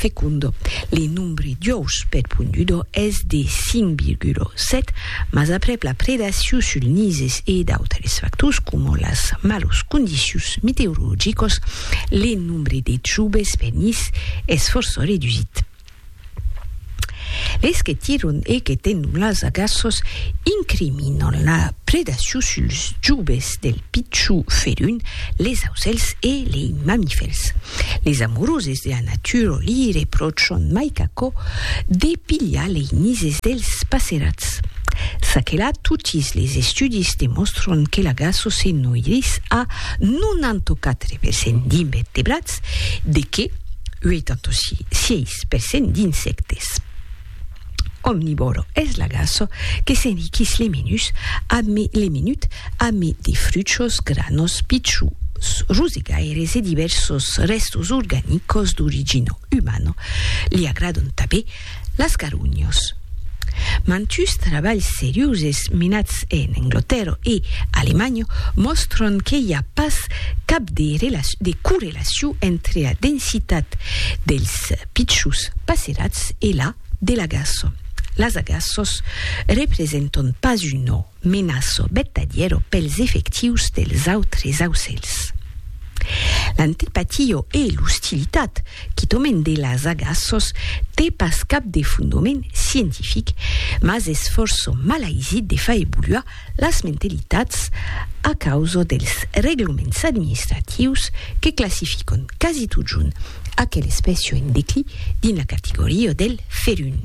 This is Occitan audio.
Fecundo. Le nombre d'uòus per pondudo es de 5,7, mas aprèp la predacion sul nises e d'autres factors coma las malos condicions meteorologicos, le nombre de trubes per nis es fòrça redusit. Les que tiron e que tenon las agaços incriminan la predacion suls joves del pichon ferun, les ausèls e lei mamifèrs. Les amoroses de la natura li repròchan mai qu'aquò de pilhar lei nises dels passerats. Ça que la, totis les estudis demòstran que l'agaço se noirís a 94% d'invertebrats, Cat, de qué? 86 per cent d'insèctes. Omnivòro es l'agaço que s'enriquís le menut amé de fruchos, granos, pichus, rosegaires e divèrsos rèstos organicos d'origina umana. Li agradon tabé Las carunhos. Mantuus trabalhs seriuses menats en Englotèrra e Alemanha mòstran que i a pas cap de correlaciu entre la densitat dels pichus passerats e la de l'agaça. Las agaças representan pas un ò. Menaço vertadièro pels efectius dels autres aucèls. L'antipatia e l'ostilitat, quitament de las agaços, té pas cap de fondoment scientific, mas es fòrça malaisit de far evoluar las mentalitats a causa dels reglaments administratius que classifican quasi totjorn aquela espècia en declí dins la categoria del ferun.